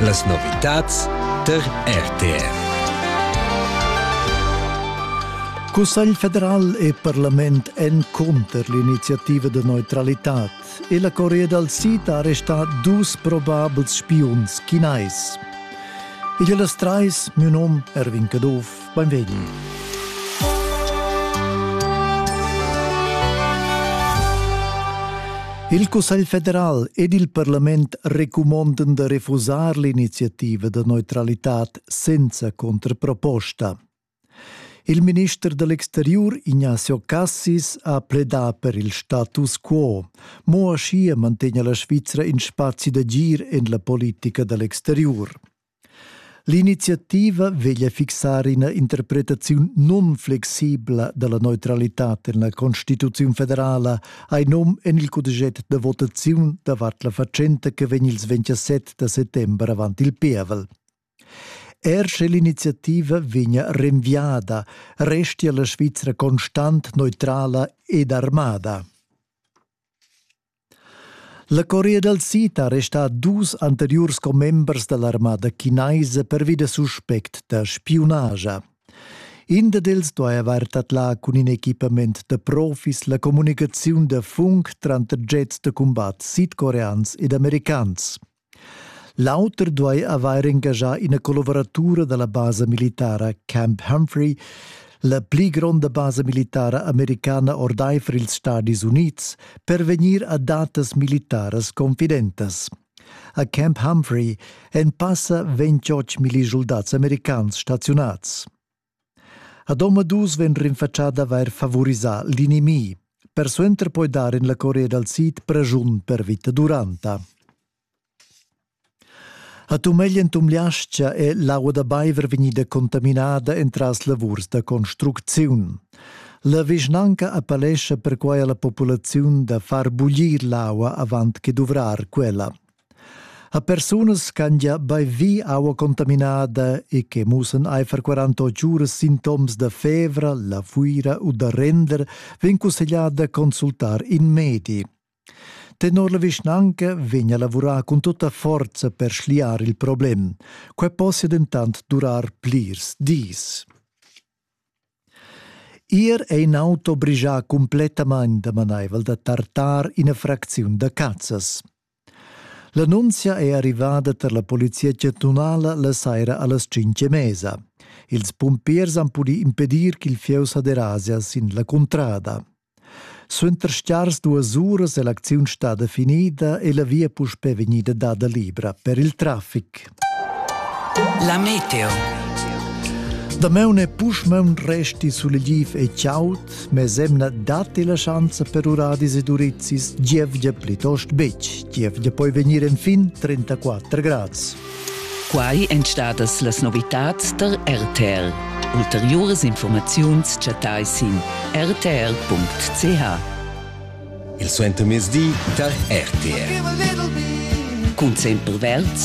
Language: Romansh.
Las novitads tar RTV. Cussegl federal e parlament èn cunter l'iniziativa da neutralitad e la Corea dal Sid ha arrestà dus probabels spiuns chinais. Igl las trais, miu nom Erwin Caduff, Beinvegni. Il Cussegl federal ed il parlament recumondan da refusar l'iniziativa da neutralitad senza contraproposta. Il minister dell'exterior Ignazio Cassis ha pledà per il status quo, mo aschia mantegna la Svizra in spazi d'agir en la politica dell'exterior. L'iniziativa veglia fixar ina interpretaziun nunflexibla dalla neutralitad en la Constituziun federala hai num en il cudeschet da votaziun davart la fatschenta che vegn ils 27 da settember avant il pievel. Er sche l'iniziativa vegnia renviada, restia la Svizra constant neutrala ed armada. La Corea dal Sid ha arrestà dus anteriurs commembers da l'armada chinaisa pervi da suspect da spiunage. In d'els duaja avair tadlà cun in equipament da profis la communicaziun da funk tranter jets da cumbat sidcoreans ed americans. L'auter duai avair engaschà ina collavuratura da la basa militara Camp Humphrey, la pli gronda basa militara americana ordaifer ils Stadis Unids, per vegnir a datas militaras confidentas. A Camp Humphrey èn passa 28 millischuldats americans staziunads. Ad omadus vegn rinfatschà d'avair favurisà l'inimih, persuenter poi dar en la Corea dal Sid praschun per vita duranta. A Tumegl en Tumliascha è l'aua da baiver vegnida contaminada entras lavurs da construcziun. La vischnanca appellescha perquai a la populaziun da far buglir l'aua avant che duvrar quella. a persunas ch'han gia baivi aua contaminada e che mussan aifer 48 uras sintoms da fevra, la fuira u da render, vegn cussegliada consultar in medi. Tenor la vischnanca vegn a lavurar cun tutta forza per schliar il problem. Quai possia dentant durar plirs dis. Ir è in auto brigià cumplettamain damanaivel da tartar ina fracziun da cazzas. L'annunzia è arrivada tar la polizia chantunala la saira a las cinq e mesa. Ils pumpiers han pudì impedir ch'il fieu sa derasia sin la cuntrada. Suenter stgars duas uras è l'acziun stada finida e la via puspè vegnida dada libra per il traffic. La meteo. Damaun è puschmaun resti sulegiv e chaud, mes emna datti la schanza per uradis ed urizis gievgia plitost betg. Gievgia poi vegnir enfin 34 grads. Quai èn stadas las novitads der RTL. Ulteriuras informaziuns chattai sin rtl.ch. Il suentermezdi tar RTL. Cun sempre verd